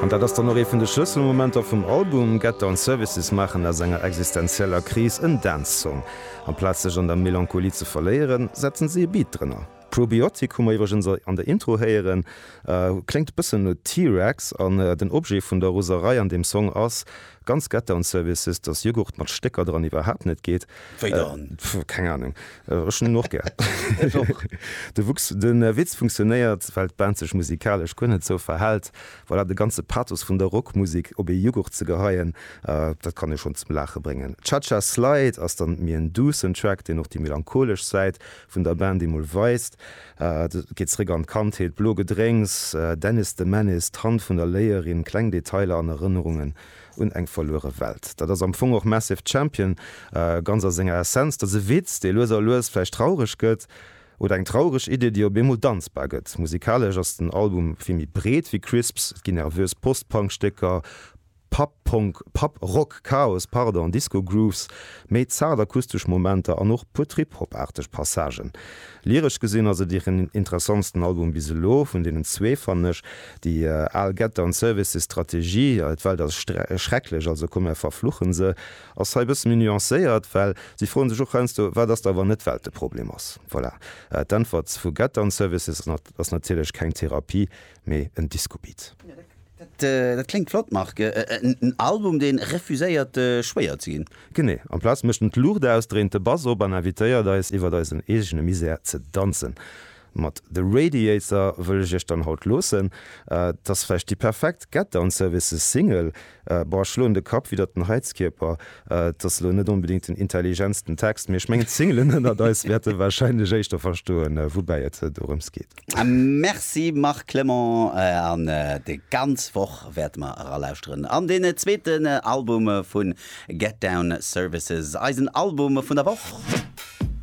An dat ass dann och ee vun de Schlësselmomenter vum Album, Get Down Services maachen aus enger existenzieller Kris en Dance-Song. Amplaz sech an der Melancholie ze verléieren, setzen si e Beat drënner. Probiotic hu mer iwwregens an der Intro héieren. Kléngt e bëssen no T-Rex an den Objet vun der Roserei an deem Song ass, Ganz get down services, dass Jughurt mat Stécker dran iwwerhaapt net geet. Wéi dann? Pff, keng Ahnung. Ech hunn en och gär. Ech och. De Wuchs, de Witz funktionéiert, well d'Band sech musikalesch guer net sou verhält. Voilà, de ganze Pathos vun der Rockmusik op ee Jughurt ze geheien, dat kann ee schonn zum Laache bréngen. Cha Cha Slide ass dann méi en duussen Track, deen och déi melancholesch Säit Vun der Band déi mol weist, et geet zréck an d'Kandheet, blo Gedrénks, Dennis the Menace, d'Hand vun der Léierin, kleng Detailer an Erënnerungen un eng verluere Welt. Dat ass am Fong och Massive Champion ganz a senger Essenz. Dat ass e Witz, dee lues a lues vläicht traureg gëtt, oder eng traureg Idee, déi op eemol danzbar gëtt. Musikalesch ass den Album vill méi breet wéi Crisps, et ginn nervös Post-Punk-Stécker, Pub Punk, Pub Rock, Chaos, pardon, Disco Grooves, méi zart akustesch Momenter an och puer Trip-Hop-aarteg Passagen. Lyresch gesinn ass et hiren interessantsten Album bis elo. Vun deenen zwee fannen ech déi al Getter an Services Strategie, d'Welt ass schrecklech, also komm mär verfluchen se, ass hei e bësse méi nuancéiert, well si froen sech och heiansdo, wat ass da wann net d'Welt de Problem ass. Voilà, d'Äntwert vu Getter an Services ass natierlech keng Therapie, mee en Disco-Beat. Dat kléngt flott, Marc. En Album, dee refuséiert schwéier ze ginn. Genee. Amplaz mécht en d'Luucht aus, dréint de Bass op an invitéiert eis, iwwert eisen eegene Misär ze danzen. Mat The Radiator wëll ech iech dann haut loossen. Et ass vläicht déi perfekt Get Down Services Single. Boah, ech schloen de Kapp widdert den Heizkierper. Et ass elo net onbedéngt den intelligentsten Text, mee ech mengen d'Singelen ënnert eis wäerte warscheinlech éischter verstoen, woubäi et dorëms geet. Merci Marc Clement, an déi ganz Woch wäerte mer eralauschteren an deen zweeten Album vu Get Down Services, eisen Album vun der Woch.